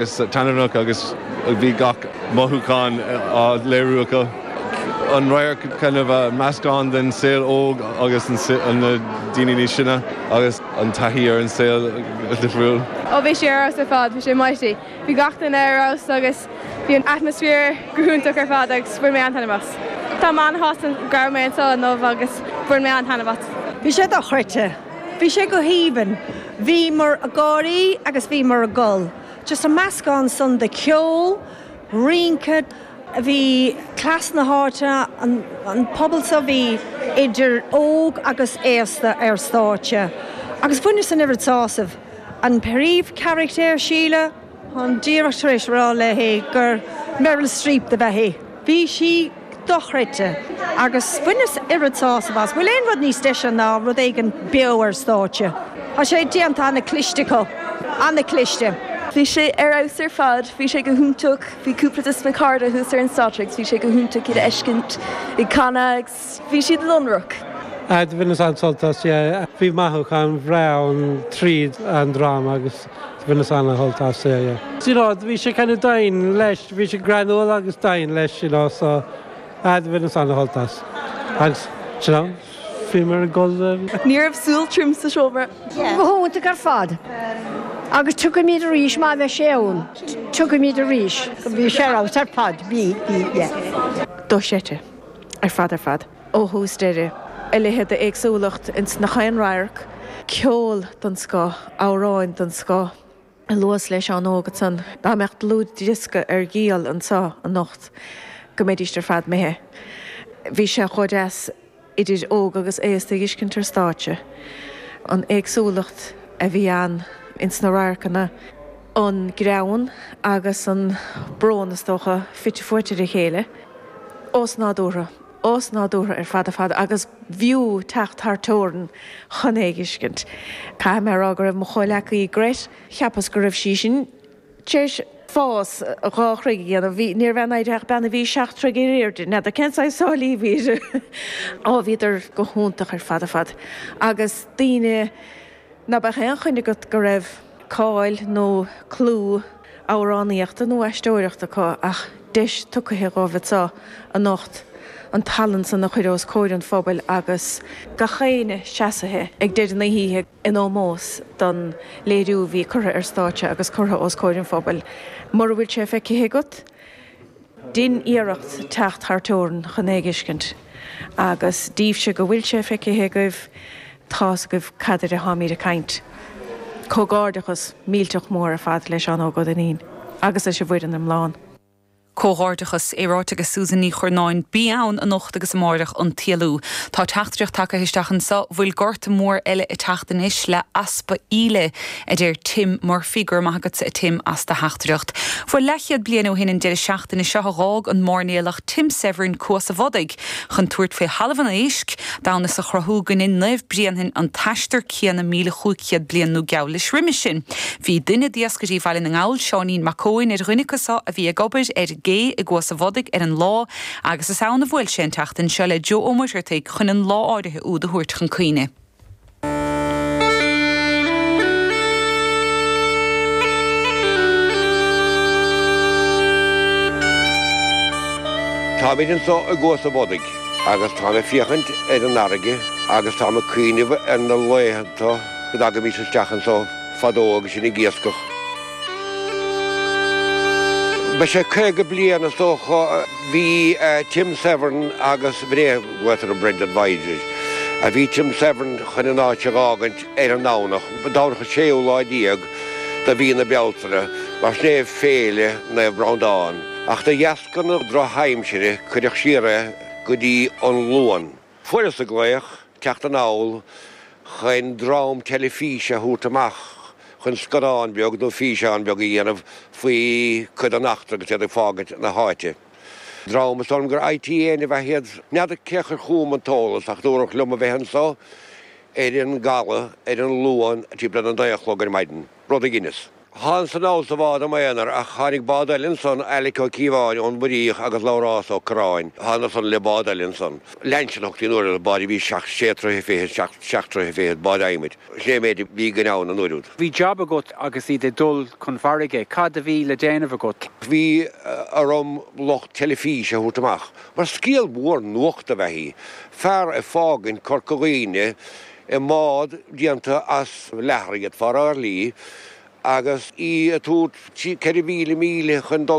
Is taitneamhach agus bhí gach mothúchán á léiriú acu. An radharc kind of meascán den saol óg agus na daoine níos sine agus an taithí ar an saol difriúil. Ó bhí sé ar fheabhas ar fad, bhí sé mighty. Bhí gach duine ar fheabhas agus bhí an atmaisféar go hiontach ar fad agus bhain mé an-taitneamh as. Tá mé an-shásta go raibh mé anseo inniu agus bhain mé an-taitneamh as. Bhí sé dochreidte. Bhí sé go haoibhinn. Bhíomar ag gáirí agus bhíomar ag gol. Just an meascán san de cheol, rince, bhí blas na háite, an pobal so, bhí idir óg agus aosta ar stáitse. Agus bhaineas an oiread sásaimh. An príomhcharachtar, Síle. Táim díreach tar éis a rá léi gur Meryl Streep do b'ea í. Bhí sí dochreidte agus bhaineas oiread sásaimh as. Bhfuil aon rud níos deise ná rud éigin beo ar stáitse? Tá sé déanta an-chliste acu, an-chliste. Bhí sé ar fheabhas ar fad. Bhí sé go hiontach. Bhí cúpla des na cairde thuas ar an stáitse agus bhí sé go hiontach iad a fheiscint ag canadh. Bhí siad iontach. Á bhaineas an-sult as é. Bhí mothúcháin bhreá ann tríd an dráma agus bhaineas an-shult as é. You know, bhí sé kind of doimhin leis, bhí sé greannmhar agus doimhin leis, you know, so á bhaineas an-shult as. Agus, you know, bhíomar ag gol de. Ní raibh súil thirim sa seomra. Go hiontach ar fad. Agus tiocfaimid arís má bheidh sé ann. Tiocfaimid arís. Bhí sé ar fad, bhí, bhí, yeah. Dochreidte. ar fad ar fad, ó thús deireadh. A leithéid d'éagsúlacht ins nach aon radharc, ceol den scoth, amhráin den scoth. Luas le Seán Óg ansan. Dá mbeadh dlúthdhiosca ar díol anseo anocht go mbeidíst ar fad imithe. Bhí sé chomh deas idir óg agus aosta a dh'fheiscint ar stáitse. An éagsúlacht a bhí ann ins na radharcanna. an greann agus an brón, is dócha, fite fuaite ar a chéile, osnádúrtha, osnádúrtha ar fad ar fad agus b'fhiú teacht thar teorainn chun é a dh'fheiscint. Caithfidh mé a rá go raibh mo chomhleacaí Grett, cheapas go raibh sí sin tar éis fás dhá throigh n'fheadar, ní raibh ina haghaidh ach bean a bhí seacht troigh ar aoirde, n'fheadar cén saghas sála a bhí uirthi. Á, bhíodar go hiontach ar fad ar fad agus daoine ná beadh aon choinne agat go raibh, cáil nó clú amhránaíochta nó aisteoireachta acu ach deis tugtha dhóibh anseo anocht an tallann san a chur os comhair an phobail agus gach éinne seasaithe ag deireadh na hoíche in ómós don léiriú a bhí curtha ar stáitse agus curtha os comhair an phobail. Mura bhfuil sé feicthe agat, Déan iarracht teacht thar teorainn chun é a thuiscint, agus daoibhse go bhfuil sé feicithe agaibh, tá's agaibh cad air atáimid ag caint. Comhghairdeachas millteach mór ar fad le Seán Óg Ó Duinnín agus leis an bhfoireann iomlán. Comhghairdeachas. É ráite aige Susan Ní Churnáin, Beidh ann anocht agus amáireach an t-éalú. Tá teachtaireacht tagtha isteach anseo bhfuil gorta mór eile ag teacht anois le easpa íle. a deir Tim Murphy. Go raibh maith agatsa, a Tim, as do theachtaireacht. Bhuel leathchéad bliain ó shin an deireadh seachtaine seo a dh'fhág an máirnéalach Tim Severin Cuas a' Bhodaigh chun tabhairt faoi Thalamh an Éisc, d'fhonn is a chruthú gur dhein Naomh Bréanainn an t-aistear céanna míle chúig chéad bliain nó geall leis roimis sin. Bhí duine d'iascairí Bhaile na nGall, Seáinín Mac Eoin, ar dhuine acu seo a bhí ag obair ar an gcé i gCuas a' Bhodaigh ar an lá agus is ann a bhuail sé an tseachtain seo le Joe Ó Muircheartaigh chun an lá áirithe úd a thabhairt chun cuimhne. Táimid anso i gCuas a' Bhodaigh agus táim ag féachaint ar an fharraige agus táim ag cuimhneamh ar na laethanta go dtagaimís isteach anso fadó agus sinn ag iascach. Beidh sé caoga bliain is dócha. Bhí Tim Severin agus Bray Wyatt ar an Brendan Voyage, bhí Tim Severin chun an áit a dh'fhágaint ar an Domhnach, Domhnach an séú lá déag de mhí na Bealtaine, mar sin é Féile Naomh Breandán, ach de dheasca na drochaimsire cuireadh siar é go dtí an Luan. Fuaireas-sa glaoch teacht anall chuin dream teilifíse a thabhairt amach chuin scannáin beag nó físeán beag a dhéanamh faoi cuid den eachtra agus iad ag fágaint na háite. Dream, is dóigh liom gur ITN ab ea iad. N'fheadar cé a chuir chugam an t-eolas ach dúradh liom a bheith anso ar an gcaladh ar an Luan timpeall ar a naoi a chlog ar maidin. rud a dhineas. Thánasa anall sa bhád i m'aonar ach tháinig bád eile ansan, Alec Ó Cíobháin ón Muiríoch agus Labhrás Ó Curráin, thánadar san le bád eile ansan. Lainsí a thugtaí an uair úd, bád a bhí seacht, sé troighe fichead, seacht, seacht troighe fichead, bád adhmaid. Sin é an méid a bhí againn ann an uair úd. Bhí jab agat agus iad ag dul chun farraige. Cad a bhí le déanamh agat? Bhí orm lucht teilifíse a thabhairt amach, mar scéal mór nuachta ab ea é. Fear ag fágaint Corca Dhuibhne, I mbád déanta as leathar iad, faraor lee, agus í ag tabhairt 4,000 míle chun dul